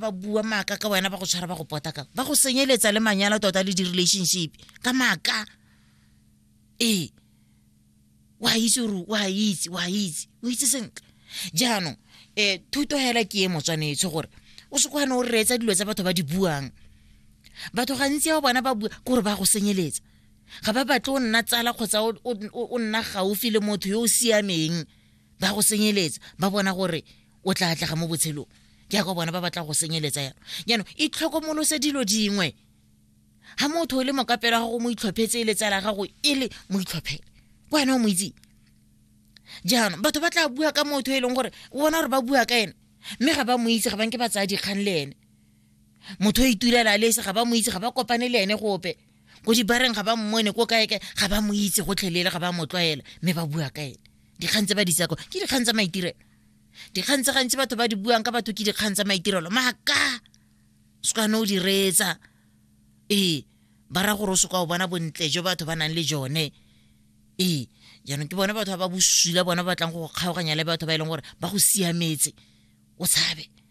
ba bua maaka ka wena ba go tshwara ba go pota ka ba go senyeletsa le manyalo tota le di-relationship ka maaka ee wa itse gore wa itse wa itse o itse sentle jaanong um thuto hela ke e motswanetsho gore o se kwane o reetsa dilo tsa batho ba di buang batho gantsi ya bona ba bua kore ba go senyeletsa ga ba batle o nna tsala kgotsa o nna gaufi le motho yo o siameng ba go senyeletsa ba bona gore o tla atlega mo botshelong jaaka bona ba batla go senyeletsa yalo jaanong itlhokomolose dilo dingwe ga motho o le mokapelo gago mo itlhophetse e letsala gago e le mo itlhophele ko wena o mo itseng jaanong batho ba tla bua ka motho e leng gore o bona gore ba bua ka ene mme ga ba mo itse ga banke ba tsaya dikgang le ene motho o itulela le ese ga ba mo itse ga ba kopane le ene gope ko dibareng ga ba mmone ko kae kae ga ba mo itse gotlhelele ga ba mo tlwaela mme ba bua ka ene dikgang tse ba di tsako ke dikgang tsa maitirelo dikgang tse gantsi batho ba di buang ka batho ke dikgang tsa maitirelo maaka se ka ne o di reetsa ee ba ra gore o se ka o bona bontle jo batho ba nang le jone ee jaanong ke bone batho ba ba bosula bone ba batlang go kgaoganya le batho ba e leng gore ba go siametse o tshabe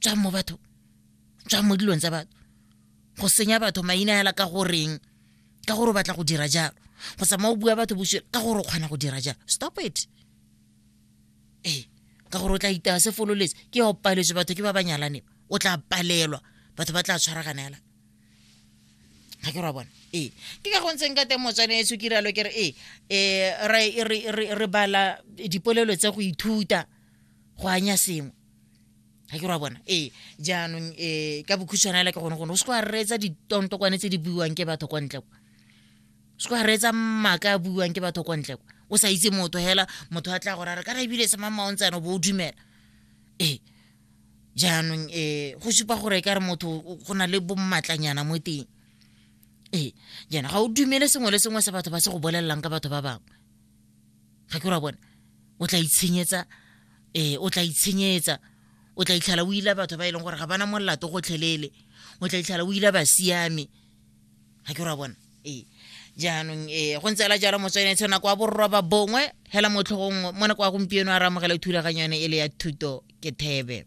tswang mo batho tswang mo dilong tsa batho go senya batho maina hela ka goreng ka gore o batla go dira jalo go sama o bua batho bosio ka gore o kgona go dira jalo stop it ee ka gore o tla itaya se fololetse ke ya o paletswe batho ke ba ba nyalane o tla palelwa batho ba tla tshwaragana hela ga ke ra bona ee ke ka gontseng ka teng motswane e tshokiralo ke re ee um re bala dipolelo tsa go ithuta go anya sengwe ga ke ra bona ee jaanong um ka bokhutshwana ela ke gone gone o se go a reetsa ditontokwane tse di buiwang ke batho kwa ntle kwa o se go a reetsa maaka a buiwang ke batho kwa ntle kwa o sa itse motho hela motho a tla go rara kana ebile semamaontsana o bo o dumela ee jaanong um go supa gore e ka re motho go na le bommatlanyana mo teng ee jaana ga o dumele sengwe le sengwe se batho ba se go bolelelang ka batho ba bangwe ga ke ra bona o tla itshenyetsa eh o tla itshenyetsa o tla itlhala o ila batho ba e leng gore ga bana molato gotlhelele o tla itlhala o ila ba siame ga ke ra bona ee jaanong ee go ntse la jalo motswenetsho nako wa borroba bongwe hela motlhogong mo nako ya gompieno a re amogele thulaganyo yone e le ya thuto ke thebe